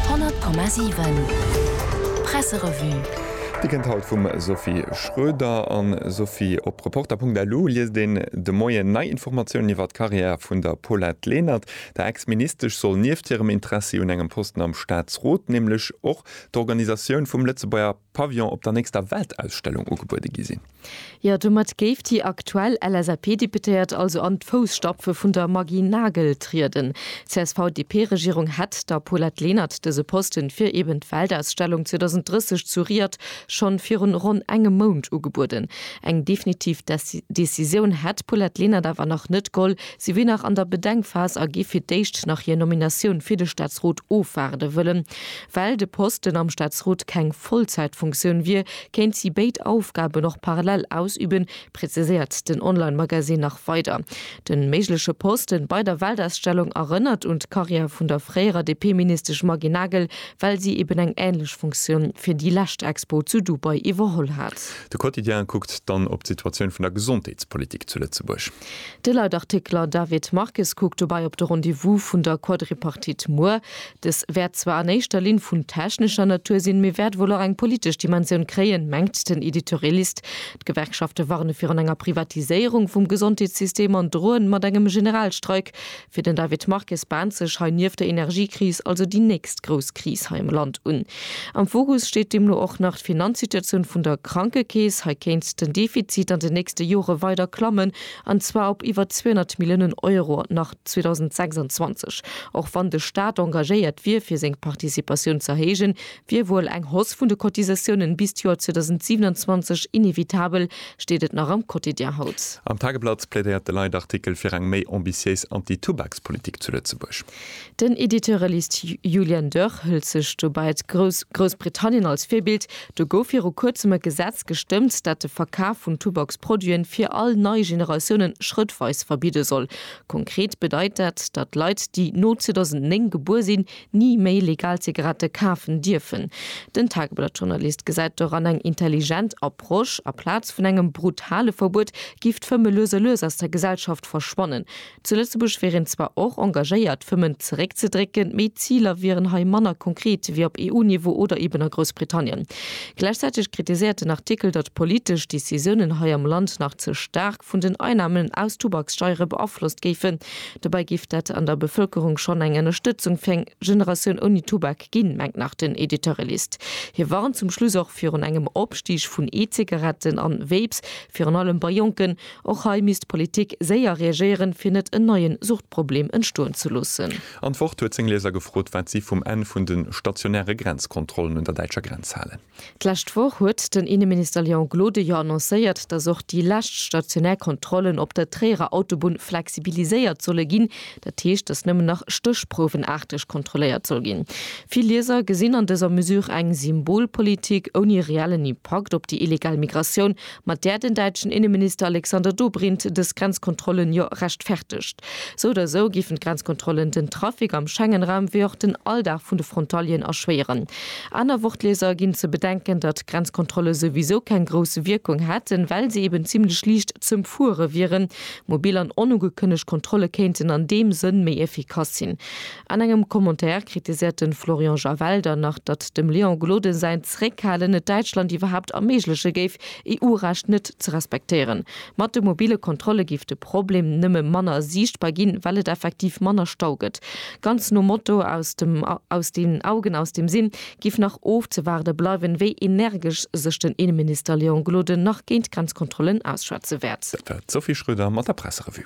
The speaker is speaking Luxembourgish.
100,7 Presserevue. Dir kënnt haut vum Sophie Schroeder an Sophie. Op Reporter.lu liest een de Moien nei Informatiounen iwwer d'Karriär vun der Paulette Lenert. Der Ex-Ministesch soll nieft hirem Interessi un engem Posten am Staatsrot nämlech och d'Organisatioun vum Lëtzebuerger. Pavillon op der nächster Weltausstellung ugebuede gi sinn. Jo, domat géif déi aktuell LSAP-Deputéiert also an d'Fousstapfe vun der Maggy Nagel trieden. D'CSV-DP-Regierung hätt der Paulette Lenert dëse Posten fir eben d'Weltausstellung 2030 zu Riad schonn virun ronn engem Mount ugebueden. Eng definitiv Decisioun hätt d'Paulette Lenert awer nach net goll. Si wier nach an der Bedenkphas a géif fir d'éischt nach hir Nominatioun fir de Staatsrot ofwaarde wëllen. Well de Posten am Staatsrot keng Vollzäitfunktioun wier, kéint si béid Aufgaben och parallel ausüben, präziséiert den Online-Magazin nach weider. De méigleche Posten bei der Weltausstellung erënnert un d'Karriär vun der fréierer DP-Ministesch Maggy Nagel, well si eben eng änlech Funktioun fir déi lescht Expo zu Dubai iwwerholl hat. De Quotidien kuckt dann op d'Situatioun vun der Gesondheetspolitik zu Lëtzebuerg. De Leitartikler David Marques kuckt dobäi op de Rendez-vous vun der Quadripartite muer. Dës wäert zwar an éischter Linn vun technescher Natur sinn, mee wäert wuel och eng politesch Dimensioun kréien, mengt den Editorialist. D'Gewerkschafte warne virun enger Privatiséierung vum Gesondheetssystem an droen mat engem Generalstreik. Fir den David Marques baant sech hei nieft der Energiekris also déi nächst grouss Kris hei am Land un. Am Fokus steet deemno och nach d'Finanzsituatioun vun der Krankekeess. Hei kéint den Defizit an den nächste Jore weider klammen, an zwar op iwwer 200 Milliounen Euro. An nach. 2026. Och wann de Staat engagéiert wier fir seng Participatioun z'erhéijen, wier wuel eng Hausse vun de Cotisatiounen bis d'Joer 2027 inevitabel, steet et nach am Quotidien haut. Am Tageblatt plädéiert de Leitartikel fir eng méi ambitiéis Anti-Tubakspolitik zu Lëtzebuerg. Den Editeure liest, Julian Dörr hëlt sech dobäi Groussbritannien als Virbild, Do gouf viru kuerzem e Gesetz gestëmmt, dat de Verkaf vun Tubaksproduiten fir all nei Generatiounen schrëttweis verbidde soll. Konkret bedeit dat, datt Leit, déi no 2009 gebuer sinn, ni méi legal Zigarette kafen dierfen. Den Tageblatt-Journalist gesäit doran eng intelligent Approche, Aplaz vun engem brutale Verbuet giff d'Fëmme lues a lues aus der Gesellschaft verschwannen. Zu Lëtzebuerg wier een zwar och engagéiert, d'Fëmmen zeréckzedrécken, mee d'Ziler wieren hei manner konkret wéi op EU-Niveau oder eben a Groussbritannien. Gläichzäiteg kritiséiert den Artikel, datt politesch Decisiounen hei am Land nach ze staark, vun den Einnahmen aus Tubakssteiere beaflosst géifen. Dobäi giff dat an der Bevölkerung schonn eng Ënnerstëtzung fir eng Generatioun ouni Tubak ginn, mengt nach den Editeurelist. Hie warnt zum Schluss och virun engem Opstig vun E-Zigaretten an Vapes, virun allem bei Jonken. Och hei misst d'Politik séier reagéieren, fir net en neien Suchtproblem entstoen ze loossen. Antwort huet seng Lieser gefrot, wat si vum Enn vun de stationäre Grenzkontrollen un der däitscher Grenz halen. D'lescht Woch huet den Inneminister Léon Gloden jo annoncéiert, datt och déi lescht stationär Kontrollen op der Tréierer Autobunn flexibiliséiert solle ginn. Dat heescht, datt nëmmen nach stéchprouwenaarteg kontrolléiert soll ginn. Vill Lieser gesinn an dëser Mesure eng Symbolpolitik ouni reellen Impakt op déi illegal Migratioun mat där den däitschen Inneminister Alexander Dobrindt dës Grenzkontrollen jo rechtfertegt. Sou oder sou géifen d'Grenzkontrollen den Trafic am Schengenraum wéi och den Alldag vun de Frontalieren erschwéieren. Aner Wort-Lieser ginn ze bedenken, datt Grenzkontrolle souwisou keng grouss Wierkung hätten, well se eben zimlech liicht z'ëmfuere wieren. Mobil an onugekënnegt Kontrolle kéinten an deem Sënn méi efficace sinn. An engem Commentaire kritiséiert de Florian Javel dann nach, datt dem Léon Gloden säin Zréckhalen et Däitschland iwwerhaapt erméigleche géif, EU-Recht net ze respektéieren. Mat de mobile Kontrolle géif de Problem nëmme manner siichtbar ginn, well et effektiv manner Stau gëtt. Ganz nom Motto aus dem aus den Augen, aus dem Sinn géif nach ofzewaarde bleiwen, wéi energesch sech den Inneminister Léon Gloden nach géint Grenzkontrollen ausschwätze wäert. Dat war d'Sophie Schröder mat der Presserevue.